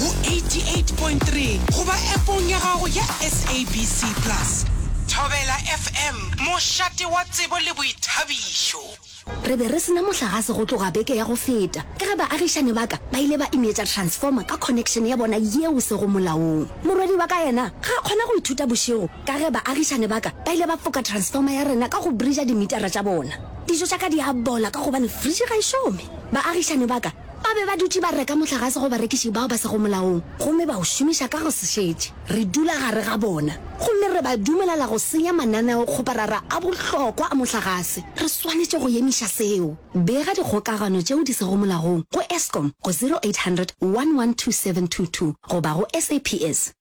go 88.3 goba Appong ya gago ya SABC Plus. Thobela FM, mošate wa tsebo le boithabišo. Re be re se na mohlagase go tloga beke ya go feta ka ge baagišani ba ka ba ile ba ineetša transformer ka connection ya bona yeo sego molaong. Morwedi wa ka yena ga a kgona go ithuta bošego ka ge baagišani ba ka ba ile ba foka transformer ya rena ka go bridger dimitara tša bona. Dijo tša ka di a bola ka gobane fridge ga e šome. Baagišani ba ka Ba be ba dutše ba reka mohlagase go barekiši bao ba sego molaong gomme ba o šomiša ka go se šetše. Re dula gare ga bona gomme re ba dumelela go senya mananeokgoparara a bohlokwa a mohlagase. Re swanetše go emiša seo. Bega dikgokagano tšeo di sego molaong go Eskom go 0800 112722 goba go SAPS.